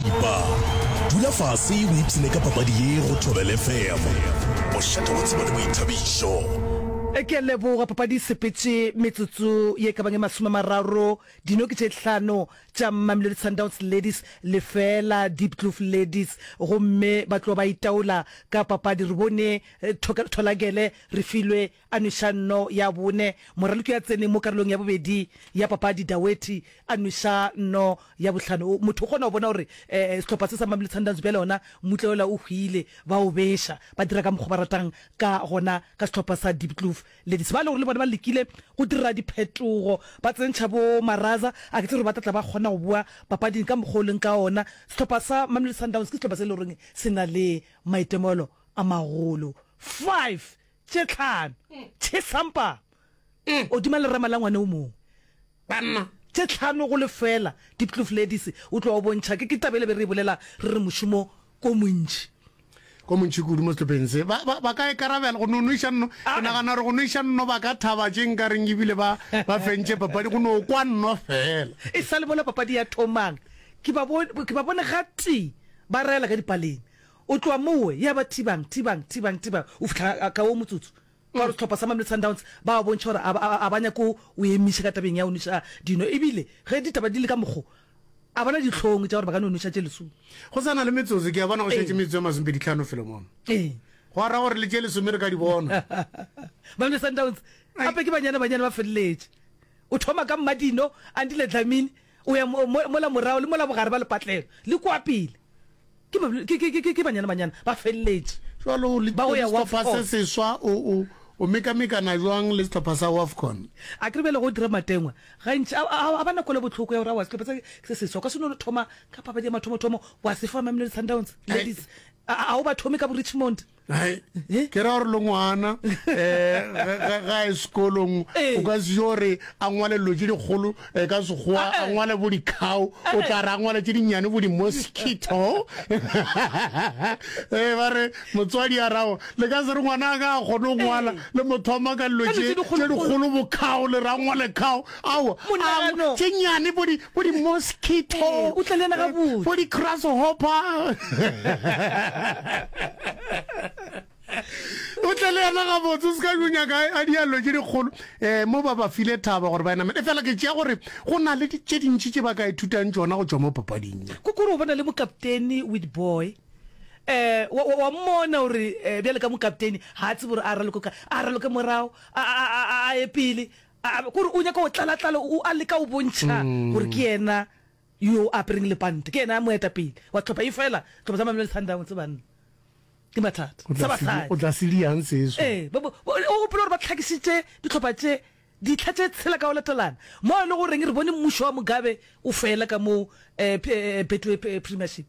Epa dula fase o ipsene ka papadi ye go Thobel FM. Mošate wa tsebo le boithabišo. Ke a leboga. Papadi e sepetše metsotso ye ka bang e masome a mararo. Dino ke tše hlano tša Mamelodi Sundowns Ladies, lefeela Diepkloof Ladies, gomme ba tloga ba itaola ka papadi. Re bone Tholagele Refilwe A nweša nno ya bone. Moraloki a tsene mo karolong ya bobedi ya papadi, Dawethi a nweša nno ya bohlano. Motho o kgona go bona gore sehlopha se sa Mamelodi Sundowns bjale gona mmutle wola o hwile, ba o beša, ba dira ka mokgwa ba ratang ka gona ka sehlopha sa Diepkloof Ladies. Ba e le gore le bone ba lekile go dira diphetogo, ba tsentšha bo Maraza, a ke tsebe gore ba tla tla ba kgona go boa papading ka mokgwa o leng ka wona. Sehlopha sa Mamelodi Sundowns ke sehlopha se e le goreng se na le maitemogelo a magolo. Five tše tlhano tše sampama godima lerama la ngwane o mongwe. Banna. Tše tlhano go lefeela, Diepkloof Ladies, o tloga o bontšha. Ke, ke taba e le be re e bolela re re mošomo ko montši. Ko montši kudu mo sehlopheng se. Ba, ba, ba ka ikarabela go no nweša nno. Ke nagana gore go nweša nno ba ka thaba tše nkareng ebile ba, ba fentše papadi go no kwa nno fela. E sa le mola papadi ya thomang, ke ba bone, ke ba bone gatee ba raela ka dipaleng. O tloga mowe, ya ba thibang, thibang, thibang, thibang, o fihla ga, ka wo motsotso, ka gore sehlopha sa Mamelodi Sundowns ba a bontšha gore a ba, a ba nyake go emiša ka tabeng ya go nweša dino, e bile ge ditaba di le ka mokgo, a ba na dihlong tša gore ba ka no nweša tše lesome. Go sa na le metsotso, ke a bona go šetše Ee. metsotso e masomepedi tlhano felo mono. Ee. Gwa ra gore le tše lesome re ka di bona. Mamelodi Sundowns Ai. gape ke banyane-banyane ba feleletše. O thoma ka Mmadino, Andile Dlamini, O ya mo, mo, mola morago le mola bogare ba lepatlelo, le kua pele. Ke, ba, ke, ke, ke, ke banyana-banyana ba feleletše. Jwalo o le, Ba go ya le sehlopha se Wafcon. seswa, o, o, o mekamekana jwang le sehlopha sa Wafcon? Akere bjale go dira matengwa gantši a, a, a ba na kwelo bohloko ya gore aowa sehlopha se, se seswa o ka se no thoma ka papadi ya mathomothomo wa se fa Mamelodi Sundowns ladies. A, a, a o ba thome ka bo Richmond. Hai, eh? ke ra gore le ngwana um eh, ga e sekolong eh. o ka se gore a ngwale lo tse dikgolo eh, ka sekgowa ah, a ngwale bo dikgao o tla re a ngwale tse dinnyane bo di-mosquito ee ba re motswadi ya rago le ka se re ngwana a ka a kgone go ngwala le mothoma ka dilo tse dikgolo bokgao le ra ngwale kgao ao tse nnyane bo di Bo di mosquito. Ee, o tla le yena gabotse. Bo di grasshopper. o tle le yena gabotse o se ka o nyaka a diallo tse dikgolo um mo ba ba file thaba gore ba enamele e fela ke tšea gore go na le tse dintši tse ba ka ithutang tsona go tswa mo papading ye ko kore o bona le mokaptene with boy eh wa wa- wa mmona gore eh, bjale ka mokaptene ga a tsebe gore a raloke ka a raloke morago a- a a- a ye pele A be kore o nyaka go tlalatlala, o a leka go bontšha gore ke yena yo a apereng lepanta, ke yena moetapele wa tlhopha. Efela tlhopha tsa Mamelodi Sundowns, banna, ke mathata. Sa basadi. O tla se di yang seso. Ee, ba, ba, ba, o gopola gore ba hlakisitše ditlhopha tše, ditlha tše tshela ka go latelana, mo e le goreng re bone mmušo wa Mugabe o fela ka mo, eh, P, eh, Betway Premiership.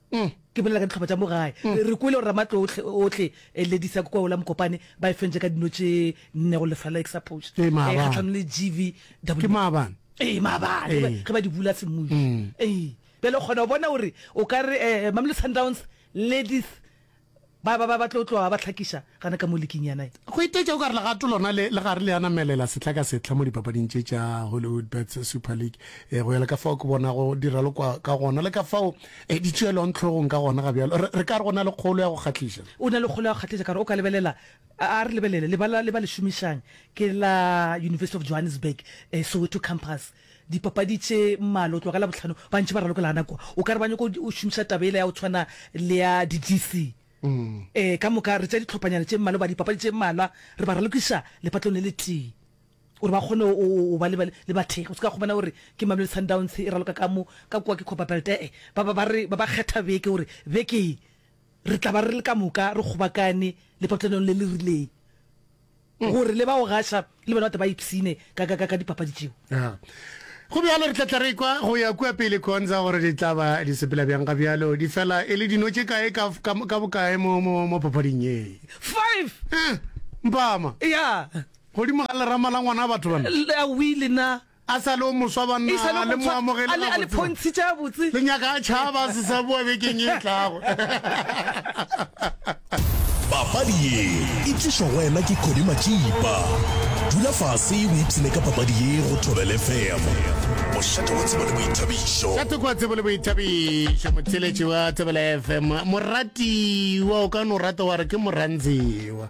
Umm ke bolela ka dihlopha tša mo gae. Re re kwele gore Ramatlo ohle ohle e Ladies ya Kokwao la Mokopane ba e fentše ka dino tše nne go lefela la Exapoge Ee, maabane. eh, kgahlanong le GVW. Ke maabane. Ee, maabane ge ba- Ee. ge ba di bula semmušo. Mm. Ee. Bjale o kgona go bona gore o ka re eh, Mamelodi Sundowns, Ladies, Ba ba ba ba tlo tloga ba hlakiša gana ka mo liking ya nine. Go itaetša o ka re legato lona le le gare le a namelela sehla ka sehla mo dipapading tše tša Hollywoodbets Super League. E, go ya le ka fao ke bonago di ralokwa ka gona le ka fao e di tšeelwang tlhogong ka gona, ga bjalo? Re, re ka re o na le kgolo ya go kgahliša. O na le kgolo ya go kgahliša ka gore o ka lebelela, a, a re lebelele lebala le ba le šomišang ke la University of Johannesburg, e, Soweto Campus. Dipapadi tše mmalwa go tloga ka Labohlano ba ntše ba ralokelana kwa. O ka re ba nyaka go šomiša taba yela ya go tshwana le ya di-DC. Ee, ka moka re tšea ditlhophanyana tše mmalwa goba dipapadi tše mmalwa re ba ralokiša lepatlong le letee gore ba kgone go ba le bathekgi. O se ka kgomana gore ke Mamelodi Sundowns e raloka ka mo, ka kwa ke Copperbelt. E-e, ba ba ba re ba ba kgetha beke gore beke ye re tla ba re le ka moka re kgobakane lepatlanong le le rileng. gore le ba go gaša le bona bate ba ipshine ka dipapadi tšeo. Go bjalo, re tla tla re kwa go ya kua pele khonza gore di tla ba di sepela bjang ga bjalo di fela e le dino tše kae ka bokae mo papading ye. Five! Mpama! Eya! Godimo ga lerama la ngwana batho bana. Awi, le na. A sa le o moswa, banna, E sa le o a le mo moswa, amogele a le- a le gabotse, ba. phontshitše gabotse. Le nyaka a tšhaba, a se sa boa bekeng e tlago. Papadi ye e tlišwa go wena ke Cody Matšipa. Dula fase o ipshine ka papadi ye go Thobel FM. Mošate wa tsebo le boithabišo. Šate kwa tsebo le boithabišo, motheletši wa Thobela FM. Moratiwa, o ka no rata wa re ke Morantsewa.